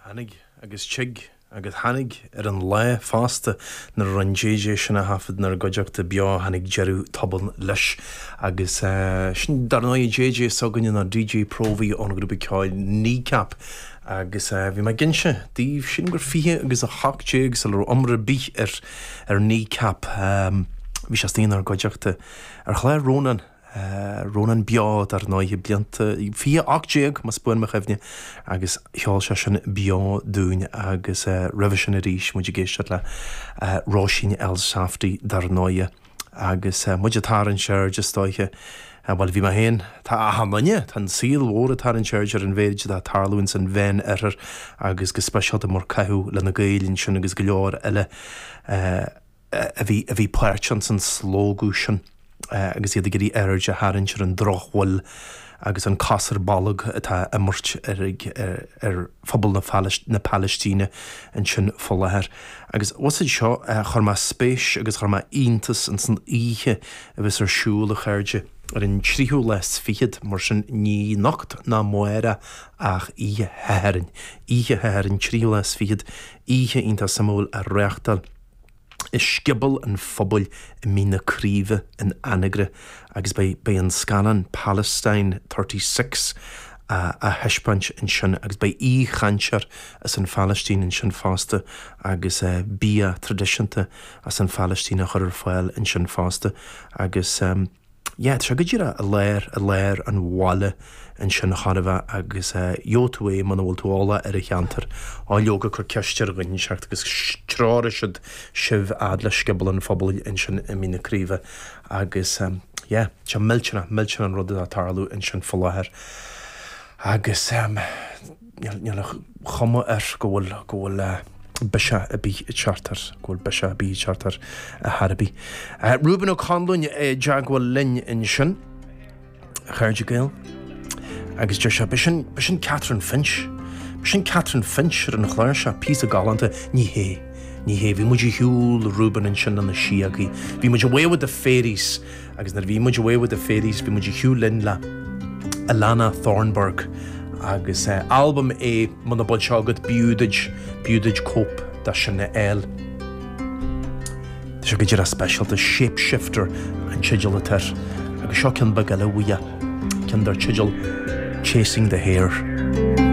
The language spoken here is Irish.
Tháinig agus tig agus tháinig ar an lá fosta nuair a rinn JJ sin a thaifead inár gcuideachta beo, tháinig deireadh tobann leis. Agus sin dar ndóighe JJ s'againne, nó DJ Próvaí ón ghrúpa ceoil Kneecap. Agus bhí mé ag inse daoibh sin gur fiche agus a hocht déag sula raibh iomrá ar bith ar Kneecap bhí sé istigh inár gcuideachta ar chlár Rónán Rónán Beo, dar ndóighe, blianta, 2018 más buan mo chuimhne, agus cheol sé sin beo dúinn agus roimhe sin arís muid ag éisteacht le Róisín Elsafty, dar ndóighe, agus muid ag tarraingt aird, is dóiche, bhuel, bhí mé féin, tá achan duine, tá an saol mhór ag tarraingt aird ar an mhéid atá ag tarlú ins an Mheán Oirthear agus go speisialta mar caitheadh le na Gaeil ansin agus go leor eile. a bhí, a bhí páirteach ins an slógadh sin agus iad ag iarraidh aird a tharraingt ar an drochbhail agus an cos ar bolg atá á imirt ar, ar phobal na, na Palaistíne ansin fá láthair. Agus bhfuil fhios agat seo, chuir mé spéis agus chuir mé iontas ins an oíche a bheas ar siúl, a chairde, ar an tríú lá 's fichead, mar sin, ní anocht ná amárach ach oíche Shathairn, oíche Shathairn, tríú lá 's fichead, oíche iontach suimiúil á reáchtáil. i Scioból an Phobail i Mín na Craoibhe in Anagaire agus beidh an scannán Palestine Thirty Six á thaispeáint ansin agus beidh aoi-chainteoir as an Phalaistín ansin fosta agus bia traidisiúnta as an Phalaistín á chur ar fáil ansin fosta agus. Yeah, tá sé go direach i lár, i lár an bhaile ansin chóir a bheith agus eh, gheobhaidh tú é muna bhfuil tú eolach ar an cheantar, á leoga cuir ceist ar dhuine inteacht agus treoróidh siad sibh fhad le Scioból an Phobail ansin i Mín na Craoibhe agus em, yeah, tá millteanach, millteanach an rud atá ag tarlú ansin fá láthair agus em, Níl a chuma air go bhfuil, go bhfuil biseach ar bith ag teacht air, go bhfuil biseach ar bith ag teacht air ar chor ar bith. Reuben Ó Conluain i dteagmháil linn ansin, a chairde Gael, agus deir sé, b'shin, b'shin Catrin Finch, b'shin Catrin Finch ar an chlár seo, píosa galánta. Ní hé, ní hé, bhí muid ar shiúl, Reuben, ansin le na síogaí, bhí muid away with the fairies, Agus nuair a bhí muid away with the fairies bhí muid ar shiúl linn le Alannah Thornburgh agus albam é muna bhfuil sé agat b'fhiú duit b'fhiú duit cóip de sin a fháil. Tá sé go díreach speisialta, Shapeshifter an teideal atá air agus seo ceann beag eile uaidh, ceann dar teideal Chasing the Hare.